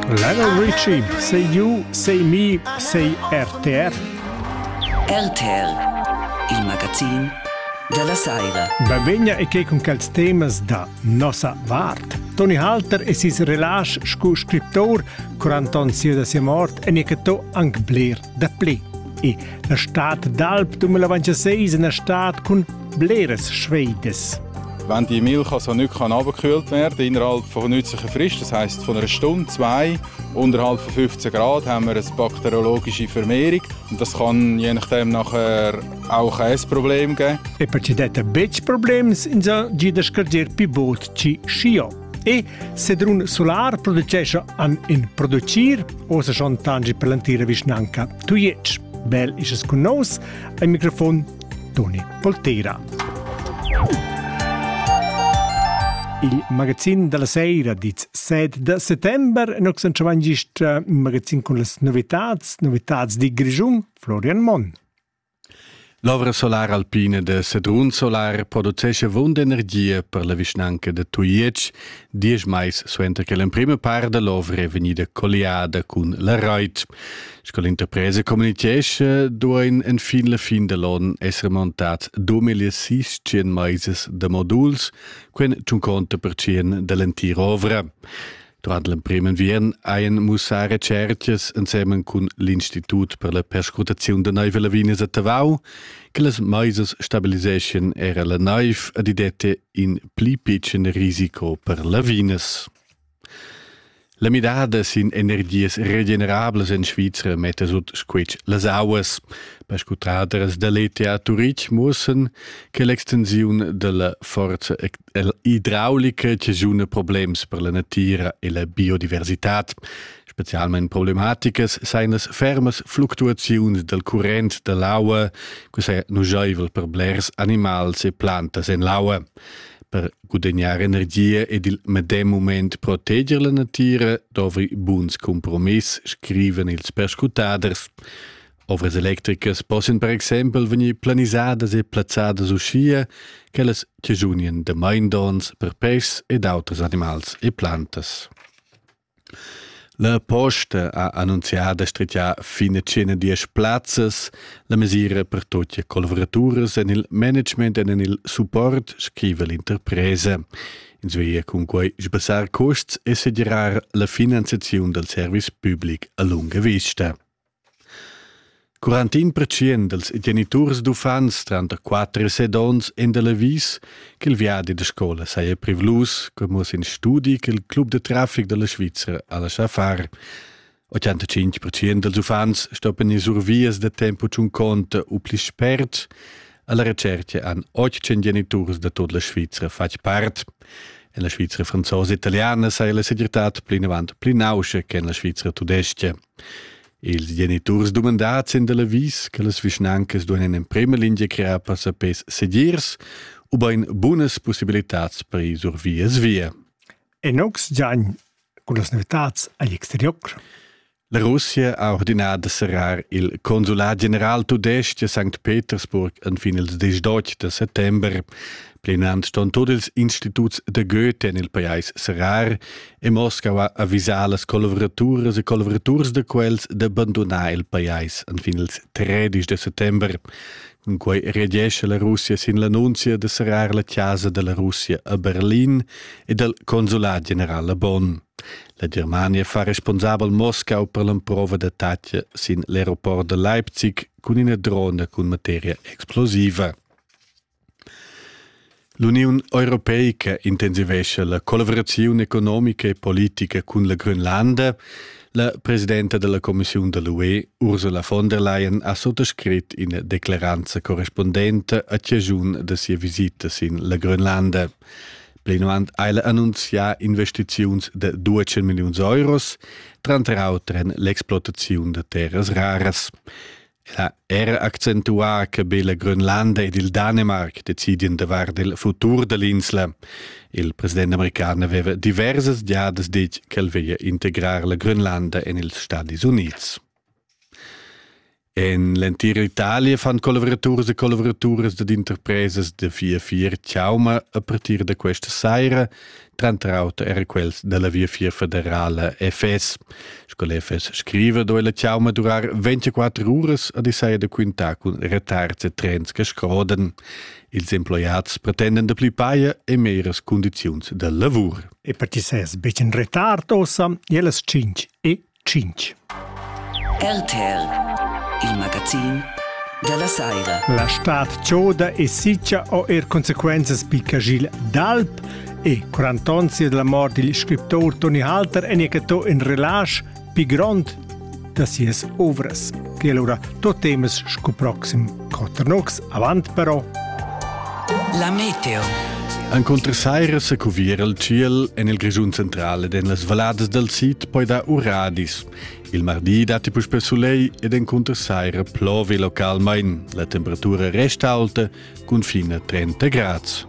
Lionel Richie, sei giu, sei mi, sei RTR. RTR, il magazin della Saira. Bavegna e che con quels temas da nossa vart. Toni Halter e ses relage scu scriptor, cur Anton sia da sia mort, e ne che to anc bler da pli. E La stad d'alp 2006 ina stad cun bleras Schweides. Wenn die Milch also nicht runtergekühlt werden kann, innerhalb von nützlicher Frist, das heisst von einer Stunde, zwei, unterhalb von 15 Grad, haben wir eine bakteriologische Vermehrung. Und das kann je nachdem nachher auch ein Problem geben. E per ci detta betg problems, insa gida scarger pi bod ci schio. E Sedrun Solar producescha an in producir, osa schon tangi per l'antira vischnanca Tuiec. Bel is es cun nos, al microfon Toni Polteira. Il magazin della sera diz 7 de settembre nox in magazin con las novitats, novitats di Grigiun, Florian Monn. L'ovra solar alpina da Sedrun Solar producescha avunda energia per la vischnanca da Tujetsch diesch mais suenter che l'emprima part da l'ovra è vegnida colliada cun la rait. Sco l'interpresa communitgescha, duain enfin la fin da l'onn esser montads 2600 mais da moduls, quen tschun conta per tschien da l'entira ovra. Durant l'emprim enviern hajan mussà retschertgas ensemen cun l'Institut per la perscrutaziun da naiv e lavinas a Tavau che las maisas stabiliseschien era la naiv ad i dette in pli pitschen risico per lavinas. La midada sin energias regenerablas en Svizra metta sut squitsch las auas. Perscrutaders da l'ETA Turitg mussen che l'extensiun della forza idraulica che giuna problems per la natira e la biodiversitad. Specialmente problematicas seien las fermas fluctuaziuns del current de l'aua, que sei nugeivel per blers animals e plantas en l'aua. Per gudagnare energia ed il medem moment proteger la natira dovrei buns compromiss, scriven ils perscrutaders. Ovras electricas possian per exempel vegnir planisadas e plazzadas uschia ch'ellas chaschunien damain donns per pes ed auters animals e plantas. La posta ha annunziada strigià fin a tschena diesch plazzas la mesira per tut collavuraturas en il management e en il support, scriva l'interpresa. Ins veglia cun quai sbassar custs e segirar la finanziaziun dal service public a lunga vista. Curant in pertschient dals geniturs d'uffants tranter quatter e set onns èn da l'avis ch'il viadi da scola saja privlus cur mo sin studi ch'il club da traffic da la Svizra ha laschà far. 85 pertschient dals uffants stoppan ir sur vias da tempo tschunconta u pli spert. Alla recerca han 800 geniturs da tut la Svizra fatg part. En la Svizra franzosa e italiana saja la segirtad plinavant pli nauscha che en la Svizra tudestga. Ils geniturs dumandads en dal avis che las vischnancas duain en emprima lingia crear passapés segirs ubain bunas pussibilitads per ir sur vias via. En ox giain cun las novitads agl exterior. La Russia ha ordinà da serrar il consulat general tudestg a St. Petersburg en fin ils 18 da settember. Plinant ston tut ils instituts de Goethe en il pajais serrar e Moskau ha avisà las collavoraturas e collaboraturs da quels da bandonar il pajais enfin ils 13 de settembre. Cun quei reagesce la Russia sin l'annunzia de serrar la casa della Russia a Berlin e del consulat general a Bonn. La Germania fa responsabel Moskau per l'emprova d'attacca sin l'aeroport de Leipzig cun ina drona cun materia explosiva. L'Uniun europeica intensivescha la collavuraziun economica e politica cun la Grönlanda. La presidenta della Commissiun da l'UE, Ursula von der Leyen, ha sottoscrit ina declaranza correspondente a ciascun da sia visitas in la Grönlanda. Plinavant ha ella annunzià investiziuns de 12 milliuns euros, tranter auter en l'explotaziun da terras raras. El ha er accentuà che be la Grönlanda ed il Danemarc decidien davart il futur dall'insla. Il president american aveva diversas giadas ditg ch'el veglia integrar la Grönlanda en ils Stadis Unids. En l'entira Italia fan collavoraturas e collavoraturas ed interpresas da vier vier chauma a partir da questa saira tranter auter era quels dalla Viafier federala FS. Sco l'FS scriva, do ella ciau ma durar 24 uras a disaia da quintar cun retards e trens che scroden. Ils emploiads pretenden da pli paia e meras condiziuns da lavur. E per ti seis becen retard ossa, e las 5 e tschintg. RTR, il magazin da la saira. La stad choda e sitga ho er consequenzas picca gil d'alp e quarant'onzi della mort dil scriptor Toni Halter en ecatò in relasch pi grond da sias ovras, che allora tot temas sco proxim Cotternucks avant però. La meteo. Encunter saira se cuviera il ciel en il Grischun centrale ed en las valladas dal sid poi da uradis. Il mardi datti puspe soleil ed encunter saira plovi localmain. La temperatura resta alta cun fine 30 grads.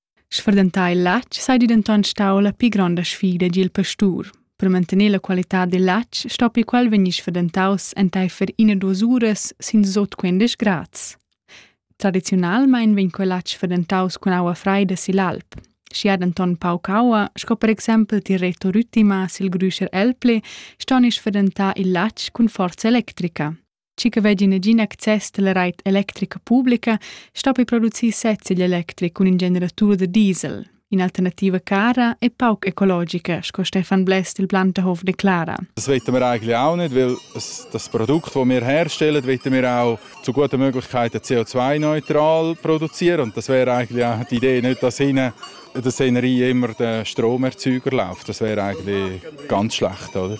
Sfurdentar il latg seigi denton stau la pli gronda sfida egl pastur. Per mantener la qualitad dil latg stoppi quel vegnir sfurdentaus enteifer ina duas uras sin sut quindisch grads. Tradiziunalmein vegn quel latg sfurdentaus cun aua freida sigl alp. Schi ha denton pauc aua, sco per exempel Tireto Rüttima sil Grüscher Elpli, ston ins sfurdentar il latg cun forza electrica. Chi che vegli negin access dalla reit electrica publica stoppi producir sez igl electric cun in generatur da diesel. In'alternativa cara e pauc ecologica, sco Stefan Bless del Planterhof declara. Das wollen wir eigentlich auch nicht, weil das Produkt, das wir herstellen, wollen wir auch zu guten Möglichkeiten CO2-neutral produzieren. Und das wäre eigentlich auch die Idee, nicht, dass hinten der Szenerie immer der Stromerzeuger läuft. Das wäre eigentlich ganz schlecht, oder?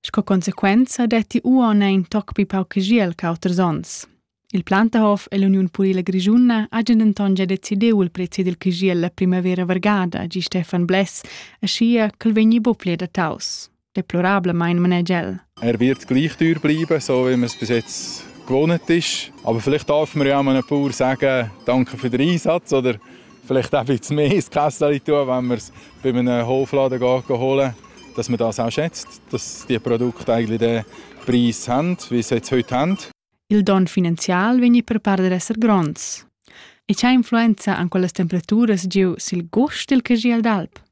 Sco consequenza detti uonn in toc pli pauc giel ch'auters onns. Il Plantahof e l'Uniun purila grischuna hajan denton gia decidiu il prezi dil giel la primavera vargada, gi Stefan Bless, aschia ch'el vegni buc pli adattaus. Deplorablamain manegia el. Er wird gleich teuer bleiben, so wie man es bis jetzt gewohnt ist. Aber vielleicht darf man ja auch mal ein paar sagen, danke für den Einsatz oder vielleicht auch ein bisschen mehr ins Kessel tun, wenn wir es bei einem Hofladen gehen holen, dass man das auch schätzt, dass die Produkte eigentlich den Preis haben, wie sie jetzt heute haben. Il don finanzial vegni per part per esser gronds. E c'ha influenza an quellas temperaturas giu sil gust dil cagiel d'alp?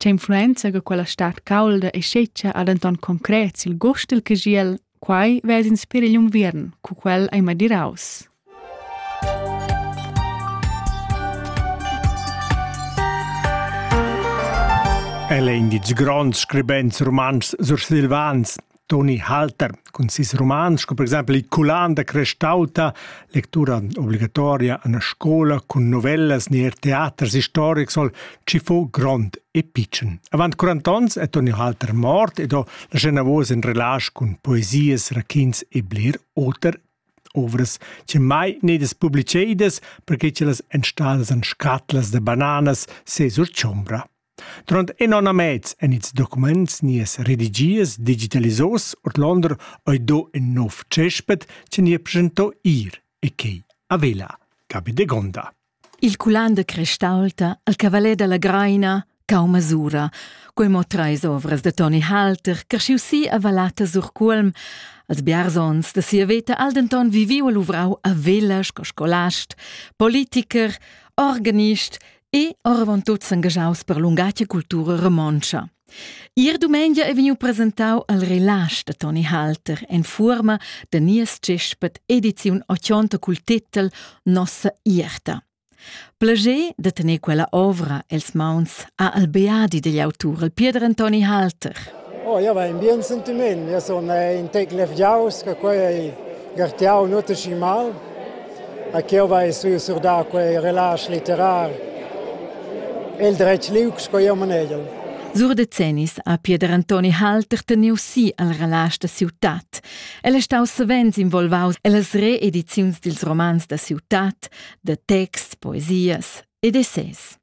Tge influenza che quella stad caulda e scetga ha denton concret sil gust dil cagiel, quai vess inspir igl unviern, cu quel ei madiraus. El è in ditg grond scribent rumantsch sursilvans. Toni Halter cun ses roman sco per exempel il Culan da Crestauta, lectura obligatoria en scola cun novellas ni er teaters historics soll ci fu grond e pitschen. Avant 40 onns è Toni Halter mort ed ho lascià navos in relage cun poesias, raquints e bler oter ovras che mai nedas publicedas perché che las enstalas en scatlas da bananas se sur chombra. Durant in onn e mez èn ils documents nies redigiers digitalisos ordlonder ei do in nov cespet che ni presento ir e quei a vela cabi de gonda. Il culan de Crestalta, il cavalet dalla Greina, cau masura. Quei mo treis ovras de Toni Halter, creschiu si a Valata sur Cuolm, als biarzons de sia veta al denton viviu e luvrau a vela sco scolast, politiker, organist e oravontut s'engaschaus per lungatga cultura romontscha. Ier dumengia è vegniu presentau al relasch da Toni Halter en fuorma da nies tschespet ediziun 80 cul titel Nossa Ierta. Plager da tener quella ovra els mauns ha al beadi degli autur, il Pieder Antoni Halter. Oh, ja va in bien sentiment. Ja sun in tec levgiaus che quei ei gartiau nuot aschi mal. A ch'jeu vai sui surdar quei relasch litterar el dretg liug sco jeu manegel. Sur decennis ha Pieder Antoni Halter teniu si al relasch da ciutat. El è stau savens involvaus ellas reediziuns dils romans da ciutat, da texts, poesias ed essais.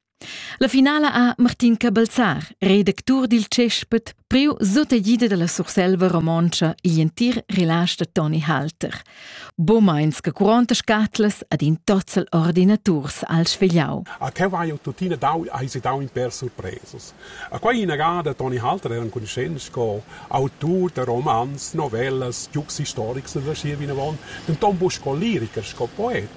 La finala ha Martin Cabelzar, redactur dil Cespet, priu sutagida dalla Surselva romontscha igl entir relage da Toni Halter. Bomeins che curonta scatlas ad in tozzel ordinaturs al svegliau. A te vai tuttina dau, hai si dau in per surpresas. A quei inagada Toni Halter era enconuschent sco autur da romans, novellas, giugs historics da schier vinavon, denton bu sco liricher, sco poet.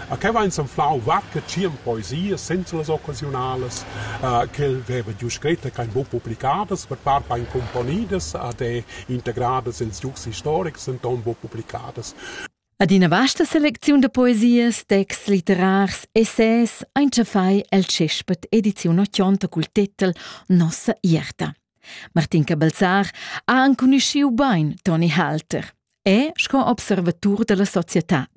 A que vain s'anflau varche tschient poesias senza las occasiunalas uh, ch'el veva giù scrit e ch'hain buc publicadas, per part hain cumponidas ed e integradas ils giugs historics, denton buc publicadas. Ad ina vasta selecziun da poesias, texts litterars, essais ein tschafai el tschespet ediziun 80 cul titel Nossa ierta. Martin Cabalzar ha anconuschiu bein Toni Halter. è sco observatur dalla societad.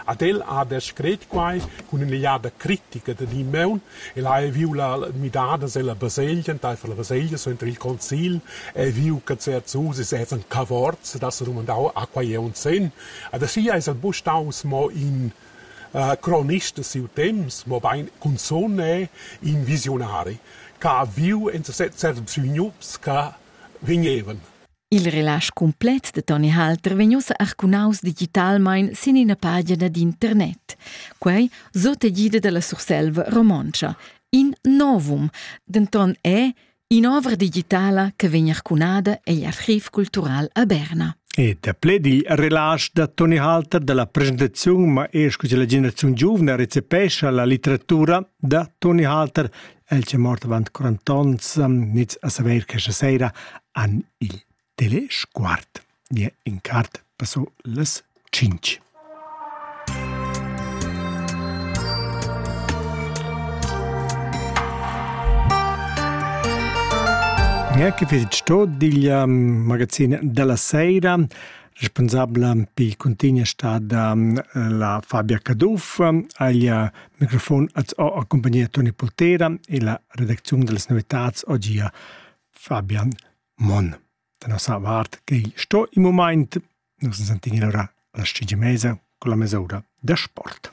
Ad el ha descret quai cun ün'egliada critica da Dimeun. El ha viu la midada sella baselgia, enteifer la baselgia suenter il concil, e viu che certs usis evan cavorts, das er dumandau a quai è un sen. Adesso es el bu staus mo in uh, cronist de siu temps, mo bein cunzone in visionari, che ha viu in certs bisognups che vegnevan. Il relasch cumplet de Toni Halter vegn ussa arcunaus digitalmein sin ina pagina d'internet. Quei sot egida dalla Surselva romontscha. In novum, denton è in'ovra digitala che vegn arcunada egl archiv cultural a Berna. E da pled il relasch da Toni Halter dalla presentaziun ma esco della generazione giovane recepescha la litteratura da Toni Halter El c'è morto avant 40 ans, nits a saver che scha sera an il telesguard. Nie in cart passo las 5. Neanche fitg tot digl magazin della sera. responsabla pi cuntigna sta da la Fabia Caduff. Aglia microfon az ho accompagnia Toni Poltera e la redacziun da las novitats oggi Fabian Mon. Da nossa vart che sto in moment nos sentini allora alla scigemesa con la mesoura da sport.